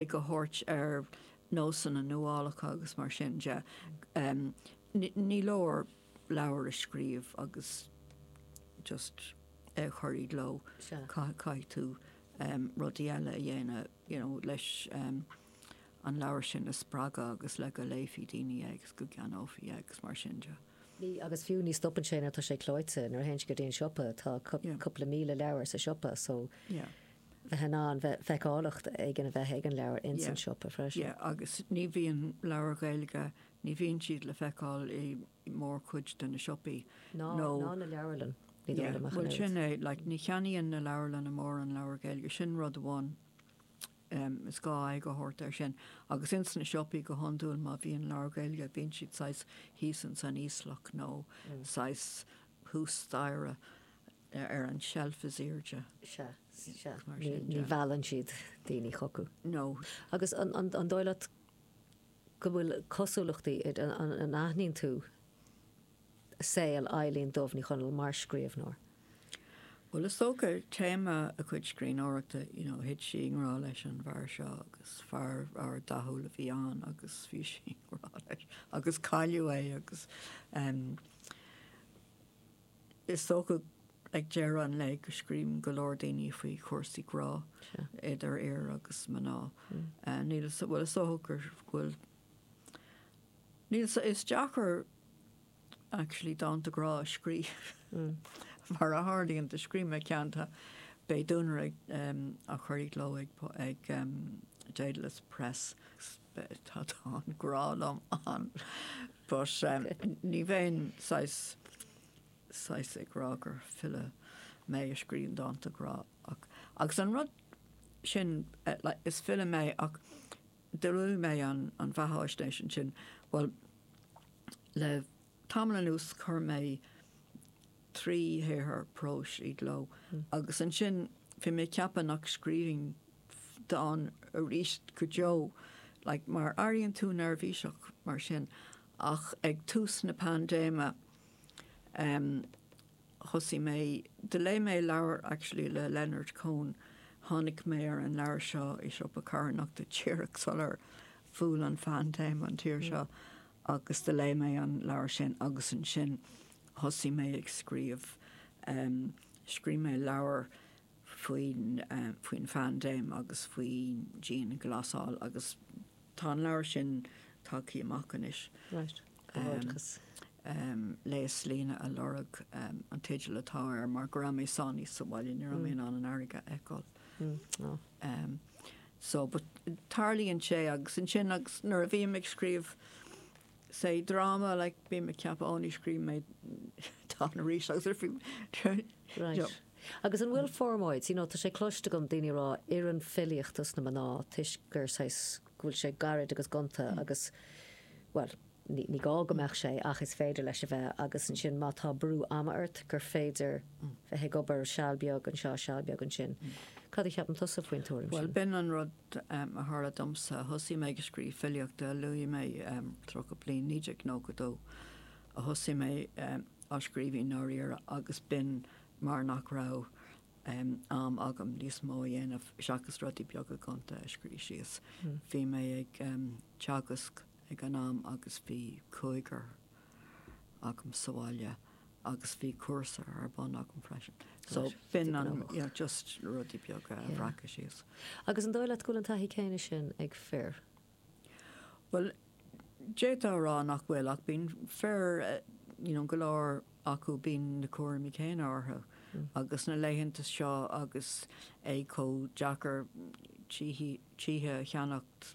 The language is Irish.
ag tabhairt ar nósanna nuálacha agus mar sin de. Ní leor leabhar a scríobh agus just é a chur i gcló, caithfidh tú rudaí eile a dhéanamh you know leis an leabhar sin a spreagadh agus le go léifí daoine é agus go gceannófaí é agus mar sin de. Agus fiú ní stopann sé nuair atá sé clóite, nuair a théann sé go dtí an siopa, tá cúpla míle leabhar sa siopa so bheith in ann bheith feiceálacht éigin a bheith ag an leabhar ins an siopa freisin. Yeah, agus ní bhíonn leabhair Ghaeilge, ní bhíonn siad le feiceáil i mórchuid de na siopaí. Ná na leabharlanna, ní dóigh liom ach an oiread. Yeah, bhuel sin é, like ní cheannaíonn na leabharlanna mórán leabhar Gaeilge, sin rud amháin, em, is gá aghaidh a thabhairt air sin. Agus ins na siopaí go hiondúil má bhíonn leabhar Gaeilge bíonn siad saghas thíos ins an íoslach nó saghas thuas staighre. Nó ar an tseilf is aoirde. Sea, sea. Ní mheallann siad daoine chucu. No. Agus an dóigh leat go bhfuil cosúlachtaí idir, an aithníonn tú saol Eibhlín Dubh Ní Chonaill mar scríobhnóir? Bhuel, is dócha, téama a cuid scríbhneoireachta, you know, thit sí i ngrá leis an bhfear seo agus fear, fear dathúil a bhí ann agus bhí sí i ngrá leis agus cailleadh é agus, em, Is dócha ag deireadh an lae go scríobhann go leor daoine faoi chúrsaí grá, idir fhir agus mná. Níl 'fhios, bhuel, is dócha go bhfuil, níl 'fhios, is deacair actually dánta grá a scríobh mar a tharlaíonn, do scríobh mé ceann, tá, beidh duanaire á chur i gcló ag Dedalus Press. Tá dán grá liom ann but ní bheinn saghas saghas ag rá gur file mé a scríobhann dánta grá ach agus an rud sin like is file mé ach de réir mo bheathaisnéis ansin bhuel le tamall anuas chuir mé trí shaothar próis i gcló agus ansin bhí mé ag ceapadh nach scríobhfainn dán arís go deo like mar airíonn tú neirbhíseach mar sin ach ag tús na paindéime em thosaigh mé do léigh mé leabhar actually le Leonard Cohen tháinig mé ar an leabhar seo i siopa carthanachta díreach sular bhuail an phaindéim an tír seo agus do léigh mé an leabhar sin agus ansin Thosaigh mé ag scríobh. Scríobh mé leabhar faoin, faoin phaindéim agus faoin dianghlasáil agus tá an leabhar sin tagtha amach anois. Léaslíne a Lorg an teideal atá air mar go raibh mé sáinnithe sa bhaile, ní raibh mé in ann an fharraige a fheiceáil. So, but tarlaíonn sé agus ansin agus nuair a bhím ag scríobh, Sea, dráma, like, bím ag ceapadh, oh, ní scríobhfaidh mé dán arís agus arís, you know. Right. Agus an bhfuil formáid, you know, tá sé cloiste agam daoine ag rá, oireann filíocht dos na mná toisc gur saghas, go bhfuil sé gairid agus gonta agus, bhuel, ní, ní gá go mbeadh sé ach is féidir leis a bheith agus ansin má tá brú ama ort gur féidir bheith ag obair seal beag anseo, seal beag ansin. Cad a cheapann tusa faoin tuairim sin? Bhuel, b'in an rud, T, a tharla domsa. Thosaigh mé ag scríobh filíochta, a luaigh mé, tríocha bliain, 1992, a thosaigh mé ag scríobh i ndáiríre agus b'in mar nach raibh am agam níos mó a dhéanamh seachas rudaí beaga gonta a scríobh síos. Bhí mé ag teagasc ag an am agus bhí cúigear. agam sa bhaile agus bhí cúrsa ar bun agam freisin. So b'in an, yeah, just rudaí beaga a bhreacadh síos. Agus an dóigh leat go bhfuil an taithí céanna sin ag fir? Bhuel, d'fhéadfá a rá nach bhfuil ach bíonn fir, you know, go leor acu bíonn na cúraimí céanna orthu agus na laethanta seo agus é chomh deacair tithe a cheannacht,